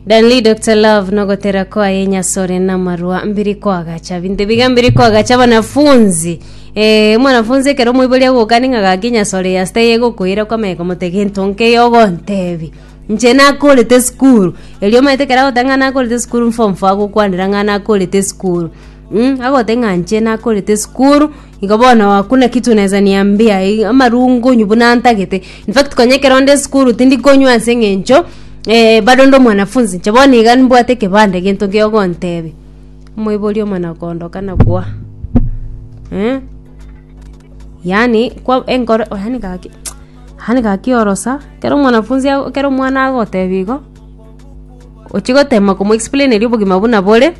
Danley Dr. Love nogotera kwaye nyasore na marua mbiri kwagacha binto biga mbiri kwagacha banafunzi eh mwanafunzi ekero moibori agokani ng'a gaki nyasore yasita yegokoira kwamanya komote gento nke yogontebi nche nakorete skuru erio omanyete ekero agoteba ng'a nakorete skuru form four agokwanera ng'a nakorete skuru Mm, agote ng'a nche nakorete esukuru igo bono hakuna kitu naeza niambia i- amarungo onyu buna ntagete infact konya ekero nde esukuru tindi konywa ase eng'encho bado nde omwanafunzi inche bono iga mbwate ekebande gento kio ogontebia omoibori omonene okondoka na kwa eh yaani kwa enkoro yaani gaki yaani gaki orosa ekero omwanafunzi ago ekero omwana agotebi igo ochi gotema komo explaineria obogima buna bore.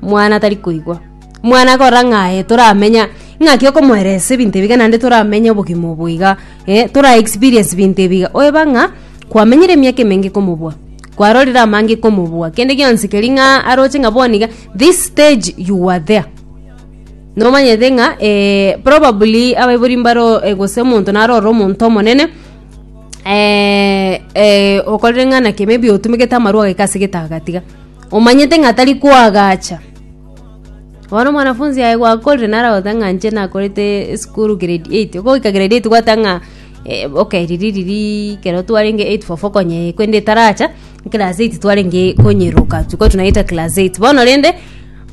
mwana tari koigwa mwana akorora ng'a aye toramenya ng'aki okomoeresa ebinto ebiga naende toramenya obogima obo iga eh, tora experience ebinto ebiga oyeba ng'a kwamenyire emiaka emenge komobua kwarorire amange komobua kende gionsi keri ng'a aroche ng'a bono iga this stage you were there nomanyete ng'a eh, probably abaibori mbaro eh, gose omonto naro ore omonto omonene eh, eh, okorire ng'a naki maybe otumegete amarwa agaika ase getagatiga. Omanyete ng'a tari koagacha. Bono omwanafunzi aye gwakorire nare agoteba ng'a inche nakorete esukuru grade eight. Okogoika grade eight gwateba ng'a eh ok riria riria ekero twarenge eight form four konya eh korende etaracha, eclass eight twarenge konyeroka tokobua tonayeita class eight. Bono rende,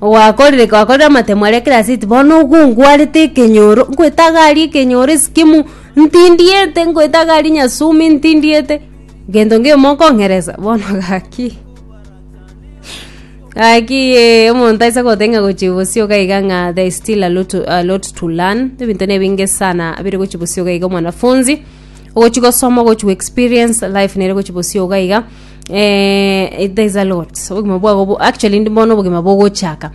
gwakorire gwakorire amatemo aria class eight bono igo ngwarete ekenyoro, ngoeta gari ekenyoro esikimo ntindiete, ngoeta gari nyasumi ntindiete, gento ngeyo mokong'eresa bono gaki. Aki eh, omonto aise gotenga gochia bosio gaiga ng'a there is still a lot, to- a lot to learn ebinto ne binge sana bire gochia bosio gaiga omwanafunzi ogochi gosoma ogochi go experience life nere gochi bosio gaiga eh, it- there is a lot obogima bwago bo- actually ndi bono obogima bogochaka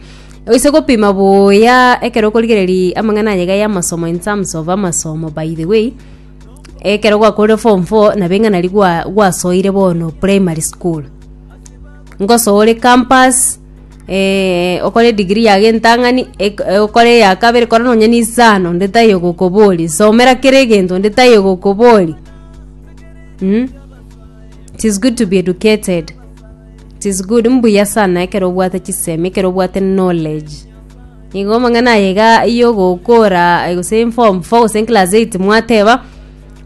oise gopima buya ekero okorigereria amang'ana aya iga ya amasomo in terms of amasomo by the way Ekero gwakorire form four nabo ing'anari gwa- gwasoire bono primary school, ngosoore campus eh, okore edigiri yago entang'ani eg- eh okore eya kabere kora nonye na isano onde taiyo ogokoboria somera kera egento onde taiyo ogokoboria mh, 'tis good to be educated, 'tis good mbuya sana ekero obwate chisemi ekero obwate knowledge. Nigo amang'ana aya iga y'ogokora eh, gose in form 4 gose in class 8 mwateba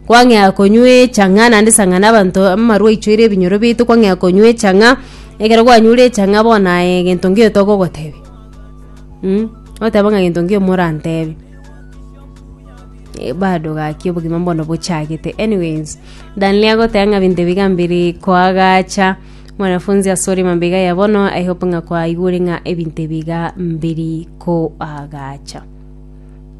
kwang'ea konywa echang'a naende sang'ana abanto amaru aichoire ebinyoro biaito kwang'ea konywa echang'a ekero kwanyure echang'a bono aye egento nkiyo togogotebia mm oteba ng'a gento nkiyo morantebe Eh, bado gaki obogima bono bochagete anyways danley agoteba ng'a binto ebiga mbiri koagacha Mwanafunzi asore mambega ya bono, I hope ng'a kwaigure ng'a ebinto ebiga mbiri koagacha.